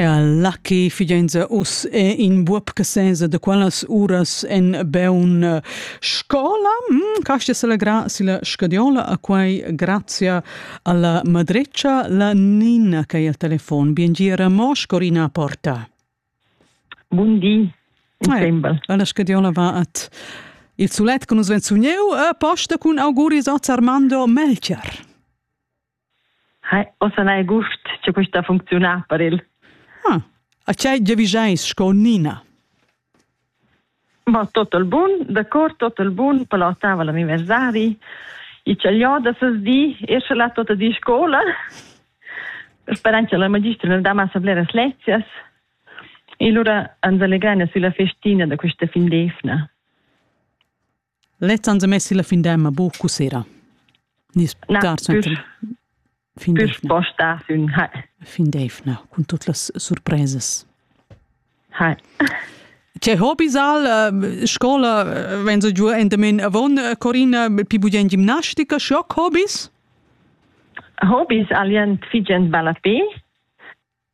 Ja, Lucky figenza us è in buob che senza de qualas uras en beun eh, scola mm, casti se la gra si la scadiola a quai grazia alla madreccia la Nina che è al telefon biengira mos Corina porta Buondì sembra eh, alla scadiola va at il sulet che nus venzugneu a posta cun auguris a Armando Melcher Hai, ossa n'hai gust che questa funcziuna per il. Hm. A tgei giavischeis sco Nina? Ma tot il bun, d'accord, tot il bun, palotava l'anniversari. I chagliò da ses di, esce là tota di scola. Sperant che la magistra ne dà massa bleras lezias. E allora ans allegrana sulla festina da questa fin d'evna. Lez ans ha mess la fin d'emma buc sera. Nis bucar sempre fin d'efna. Sposta sün ha. Fin d'efna cun tut las surpresas. Ha. Che hobbies al uh, scola uh, wenn so giu endamen avon uh, Corina pi bugien gimnastica schock hobbies? Hobbies alien figent ballapé.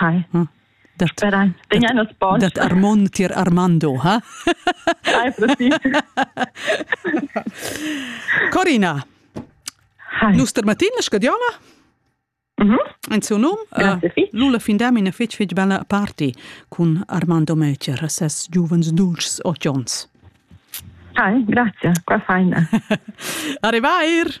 Hi. Hm. Dat, dat Armon tier Armando, ha? Hi, Corina, Hi. nus termatina scadiola? Mm -hmm. En suo num, uh, Lula fin da mina fetg fetg bella party cun Armando Möcher, ses giuvens dulcis occhions. Hi, grazie, qua faina. Arrivair!